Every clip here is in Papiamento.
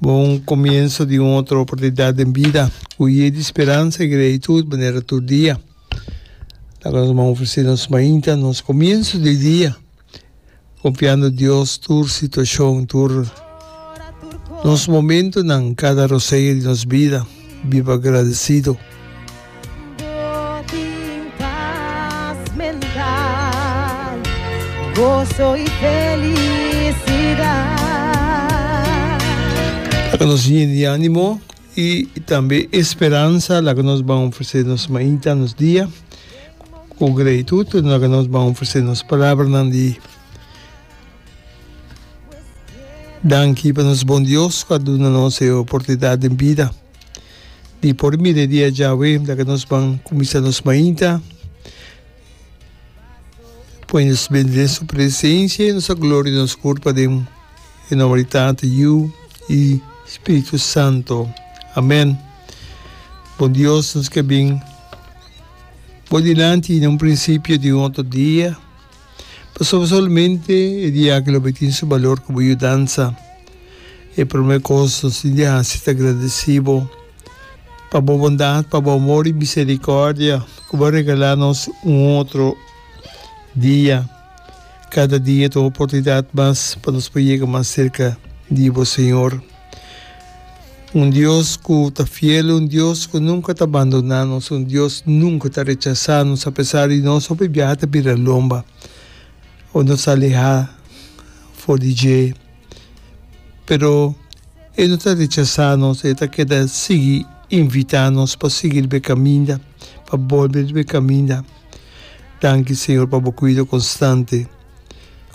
Bo un comienso di un otro oportunidad den bida cu yey di speransa y gratitud manera tur dia. Laga nos man ofrece nos mainta nos comienso di dia, confiando Dios tur situacion, tur nos momentonan, cada rosea di nos bida. Biba agradecido. Laga nos yen di animo i tambe esperansa, laga nos ban ofresé nos mainta, nos dia. Ku gratitud laga nos ban ofresé nos palabranan di danki pa nos Bon Dios ku a duna nos e oportunidat den bida. Di por mire di e djawe ta ke nos ban kuminsá nos mainta. Pone nos bende den su presensia i nos a gloria nos kurpa den e nòmber di Tata, Yu i Spiritu Santu. Amèn. Bon Dios, nos ke bin bo dilanti na un prinsipio di un otro dia. Pasobra solamente e dia aki lo bo tin su balor ku bo yudansa. E promé kos nos tin di hasi ta gradesí bo pa bo bondat, pa bo amor i miserikòrdia ku bo a regalá nos un otro dia. Kada dia ta un oportunidat mas pa nos por yega mas serka di bo, Señor. Un Dios ku ta fiel, un Dios ku nunka ta bandoná nos, un Dios nunka ta rechasá nos apesar di nos hopi biaha ta bira lomba o nos ta alehá for di dje. Pero e no ta rechasá nos, e ta keda sigui invitá nos pa sigui riba e kaminda, pa bolbe riba e kaminda. Danki Señor pa bo kuido konstante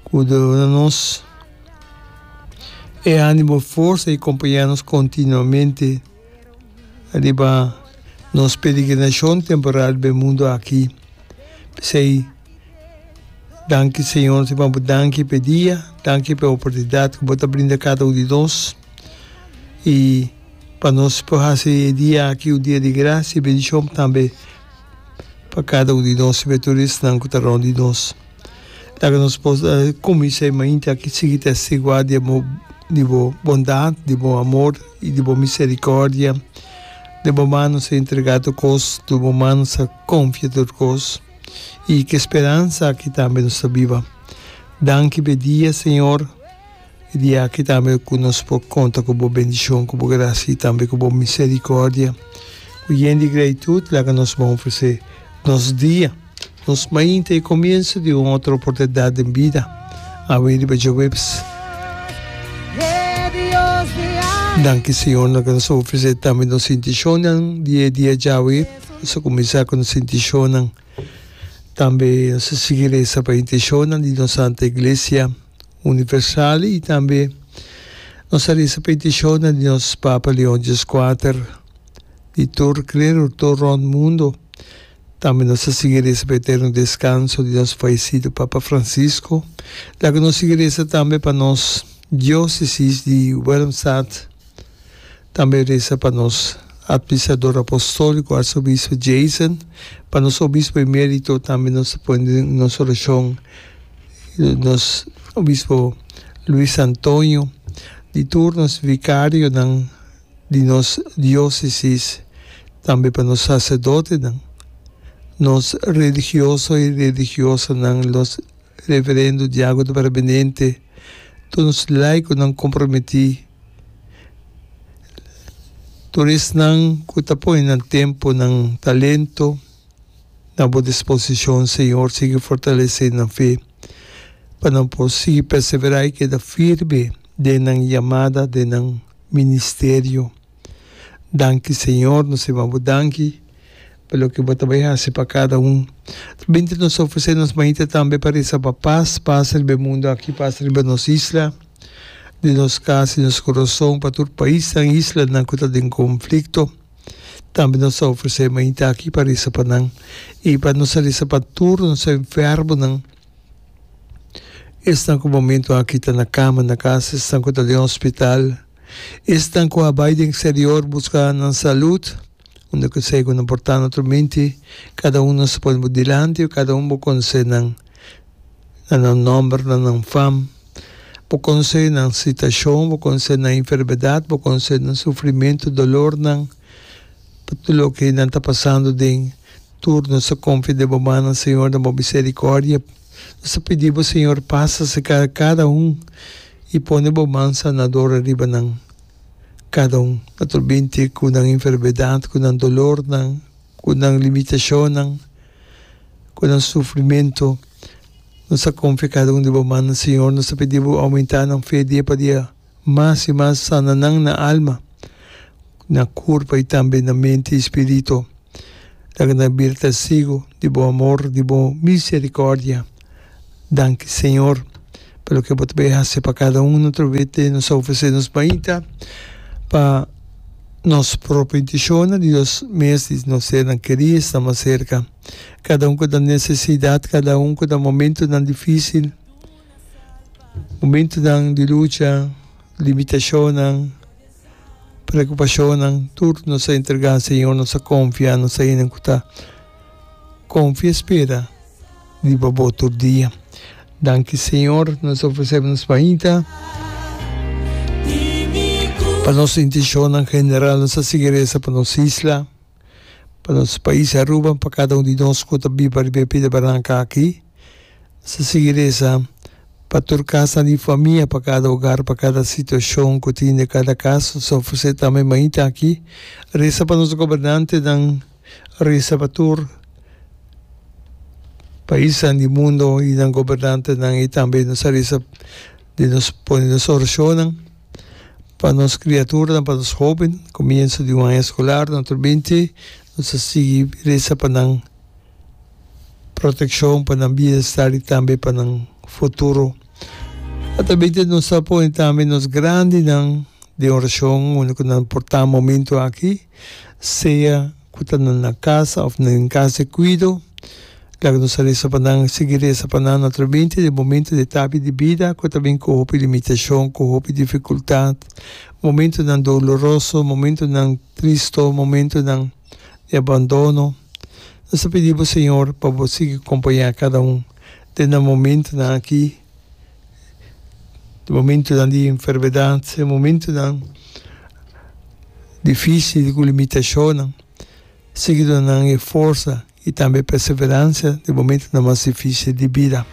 ku duna nos. E animo, forsa y compañia nos continuamente riba nos peregrinacion temporal riba e mundo aki. P'esey danki Señor, te manda danki p'e dia, danki p'e oportunidad cu bo ta brinda cada un di nos y pa nos por haci e dia aki un dia di gracia y bendición tambe. pa kada un di nos i metorisnan ku ta rònt di nos. Laga nos por kuminsá e mainti aki sigui testiguá di bo di bo bondat, di bo amor i di bo miserikòrdia. Den bo man nos a entregá tur kos, tur bo man nos a konfia tur kos, i ku e speransa aki tambe nos ta biba. Danki p'e dia, Señor. E dia aki tambe ku nos por konta ku bo bendishon, ku bo grasia i tambe ku bo miserikòrdia. Ku yen di gratitut laga nos bon ofresé nos dia, nos mainta i e komienso di un otro oportunidat den bida. Awe riba Jueves. Danki Señor nos laga nos a ofresé tambe nos intishonnan di e dia djawe. Nos a kuminsá ku nos intishonnan. Tambe nos a sigui resa pa e intishonnan di nos Santa Iglesia. Universale y tambe nos a risa peticiona di nos Papa Leon Dies Quater di tur clero tur rond mundo. Tambe nos a sigui risa pa e eterno descanso di nos faisido Papa Francisco. Laga nos sigui risa tambe pa nos diocesis di Willemstad. Tambe resa pa nos Administrador Apostólico, Arzobispo Jason, pa nos Obispo Emérito, tambe nos ta pone den nos oracion nos Obispo Luis Antonio, di tur nos Vicarionan di nos Diócesis, tambe pa nos Sacerdotenan, nos Religioso y Religiosanan, los Reverendo Diago de Barbenente, tur nos laikonan komprometí, tur esnan ku ta pone nan tempu, nan talento na bo disposishon, Señor, sigui fortalesé nan fe, pa nan por sigui perseverá i keda firme den nan yamada, den nan ministerio. Danki Señor, nos a babu danki pa loke bo ta bai hasi pa kada un. Binti nos a ofresé nos maita tambe pa resa pa pas, pas riba e mundu aki, pas riba nos isla, den nos kas i nos kurason, pa tur paisnan i islanan ku ta den konflikto. Tambe nos a ofresé e maita aki pa resa pa nan i pa nos a resa pa tur nos enfermunan, esnan ku momentu aki ta na kama na kas, esnan ku ta den hospital, Esnan ku a bai den eksterior buska nan salud, unda ku esei ku nan por ta na otro minti, kada un nos ta pone bo dilanti, kada un bo konsé nan na nan nòmber, na nan fam, bo konsé nan situashon, bo konsé nan enfermedat, bo konsé nan sufrimentu, dolornan, pa tur loke nan ta pasando den tur nos ta konfia den bo manan, Señor, na bo miserikòrdia. Nos ta pidi bo, Señor, pasa cerca di cada un y pone bo man sanador ariba nan, cada un. No ta olbinte cu nan enfermedad, cu nan dolornan, cu nan limitacionnan, cu nan sufrimento, nos ta confia cada un di bo mannan, Señor. Nos ta pidi bo aumenta nan fe dia pa dia. mas i mas sana nan na alma, na kurpa i tambe na menti i spiritu. Laga nan bir testigu di bo amor, di bo miserikòrdia. Danki Señor pa loke bo ta bai hasi pa kada un na tur vete. Nos ta ofresé nos mainta pa nos propio intishonnan, di nos mes, di nos sernan kerí, esnan mas serka. Kada un ku ta nesesidat, kada un ku ta momentunan difísil. Momentunan di lucha, limitashonnan, preokupashonnan, tur nos a entregá Señor, nos a konfia, nos a hende ku ta konfia spera riba Bo tur dia. Danki Señor, nos a ofresé nos mainta, pa nos intishonnan general, nos a sigui resa pa nos isla. Pa nos pais Aruba, pa kada un di nos ku ta biba riba e pida baranka aki, nos ta sigui resa pa tur kasnan di famia, pa kada ogar, pa kada situashon ku tin den kada kas. Nos ta ofresé tambe mainta aki, resa pa nos gobernantenan, resa pa tur paisnan di mundo i nan gobernantenan i tambe nos ta resa. di nos pone nos orashonnan pa nos kriaturanan, pa nos hoben. Komienso di un aña skolar nan tur binti, nos a sigui resa pa nan protekshon, pa nan bienestar i tambe pa nan futuro. Ata binti nos a pone tambe nos grandinan den orashon, unda ku nan por ta momentu aki. sea cu ta na nan casa of na den casa di cuido. Laga nos a reza pa nan, sigui reza pa nan, naturalmente den momento di etapi di bida cu ta bin cu hopi limitacion, cu hopi dificultad, momentonan doloroso, momentonan tristo, momentonan di abandono. Nos ta pidi bo Señor pa bo sigui compaña cada un den nan momentonan aki. di momentunan di enfermedat, e momentunan difisil di cu limitashonnan, sigui duna nan e forsa y tambe e perseverancia den momentunan mas difisil di bida.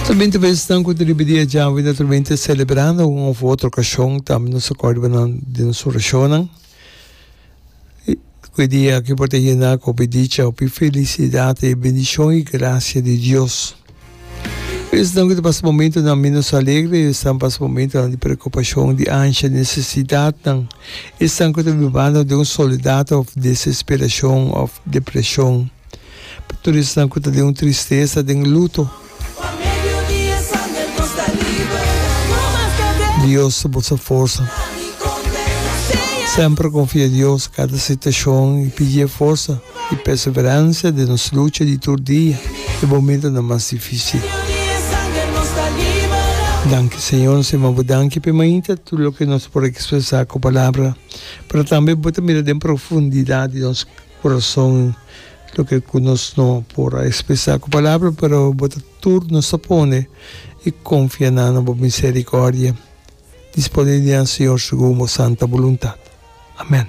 Ta binte paisnan cu ta riba di e djawe, naturalmente celebrando un of otro ocasion, tambe nos ta corda di nos oracionnan. Cu e dia aki por ta yena cu hopi dicha, hopi felicidad y bendicion y gracia di Dios. Esnan cu ta pasa momentonan menos alegre, esnan pasa momentonan di preocupacion, di ansia, di necesidadnan. Esnan cu ta bibando den un soledad of desesperacion of depresion. Pa tur esnan cu ta den un tristeza, den luto. Dios ta boso forsa. Semper konfia Dios kada situashon i pidié forsa i perseverancia den nos lucha di tur dia e momentonan mas difisil. Danki Señor, nos ta mabo danki p'e mainta tur loke nos por ekspresá ku palabra, pero tambe bo ta mira den profundidad di nos. Corazon loke cu nos no por a expresa cu palabra, pero bo ta tur nos ta pone y confia nan na bo misericordia. Dispone di nan, Señor, segun bo santa buluntad. Amen.